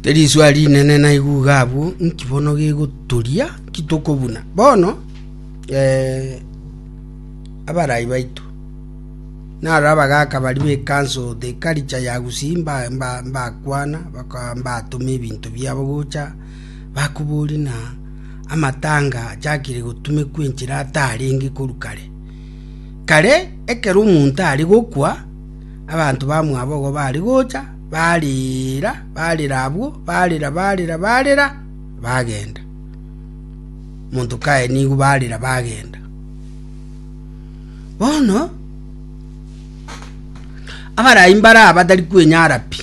Risua rinene naigugha abwo, nki bono gegotoria? Nki tokobuna bono? Eh, abarai baito naro abagaaka baria b'ekanso o The Culture ya Gusii mba- mba- mbakwana baka- mbatoma ebinto biabo gocha bakoboria ng'a amatanga achakire gotumekwa enchera atarenge korwa kare. Kare ekero omonto are gokwa, abanto bamwabo igo bare gocha Barira, barira abwo, barira, barira, barira, bagenda. Monto kaye nigo barira bagenda. Bono abarai mbare aba batari kwenyara pi,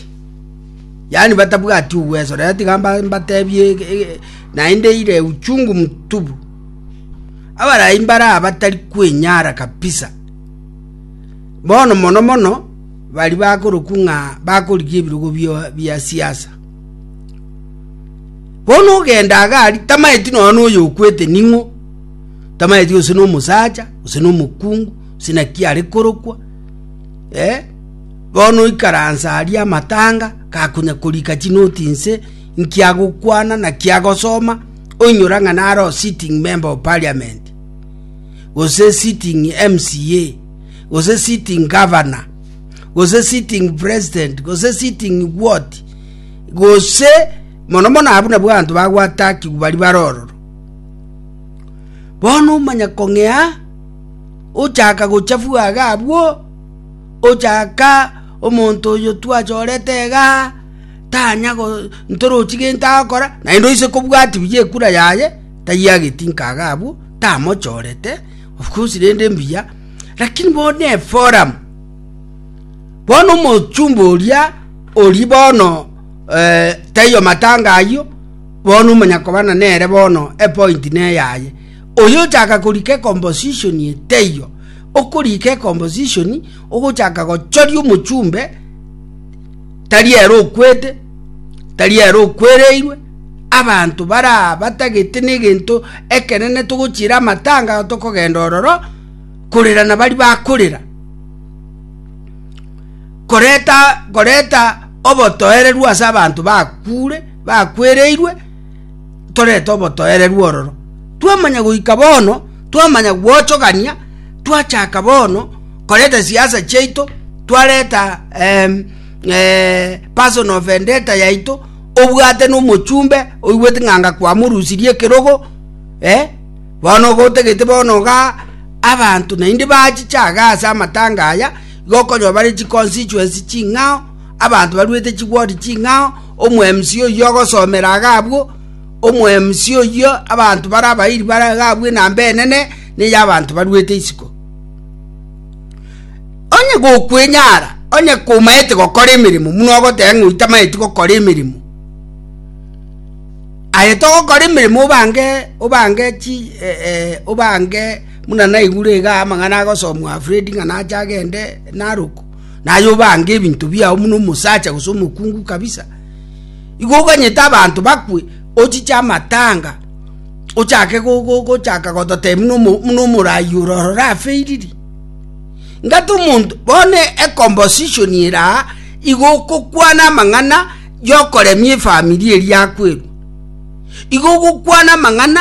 yaani batabwati uwezo. Rero tiga mba- mbatebie e- e- e- naende ire uchungu mtubu. Abarai mbare aba batari kwenyara kabisa, bono mono mono. baria bakorokwa ng'a bakorigia ebirogo bia siasa. Bono ogenda agari tamaeti nonya noyo okwete ning'o tamaeti gose nomosacha gose nomokungu gose naki are korokwa eh bono oikaransa aria amatanga gakonya korika chinoti nse nki agokwana naki agosoma oinyora ng'a naro sitting member of parliament gose sitting MCA. gose sitting governor, gose sitting president, gose sitting what, gose mono mono abu nabwo abanto bagwatakigwa bari barororo bono omanya kong'ea ochaka gochafua iga abwo ochaka omonto oyo twachorete igaa tanya go ntorochi gento agokora naende oise kobwati buya ekura yaye taiageti nkaga abwo tamochorete Of course rende mbuya, lakini bono eforum, bono omochumba oria ori bono eh, taiyo matanga ayio bono omanya kobana nere bono epointi neyaye oyo ochaka korika ecomposition ye taiyo okorika ecomposition ogochaka gochoria omochumbe tari ere okwete, tari ere okwereirwe, abanto bara batagete negento ekenene togochiera amatanga tokogenda ororo korera na bari bakorera koreta koreta obotoereru ase abanto bakure bakwereirwe torete obotoereru ororo. Twamanya goika bono, twamanya gwochogania, twachaka bono koreta siasa chiaito, twareta um, eh, personal vendetta yaito, obwate nomochumbe oigwete ng'anga kwamorusirie ekerogo eh? bono gotegete bono ga abanto naende bachichaga ase amatanga aya gokonywa bare chiconstituency ching'ao abanto baruete chigwodi ching'ao Omwemusi oyio ogosomera iga abwo, omwemusi oyio abanto bare abairi bare iga abwo enamba enene ney'abanto baruete isiko. Onye gokwenyara, onye komaete gokora emeremo, buna ogoteba ng'a oitamaeti gokora emeremo, aye togokora emeremo obange obange chi eh, eh, obange buna naigure iga amang'ana agosomwa Fredi ng'a nache agende Narok naye obange ebinto biao buna omosacha gose omokungu kabisa. Igo oganyete abanto bakwe, ochiche amatanga, ochake gochaka gototebia buna omoraai ore ororo afeiriri. Ngate omonto bono ecomposition eraa igo okokwana amang'ana yokoremia efamiri eria akwerwa. Igo ogokwana amang'ana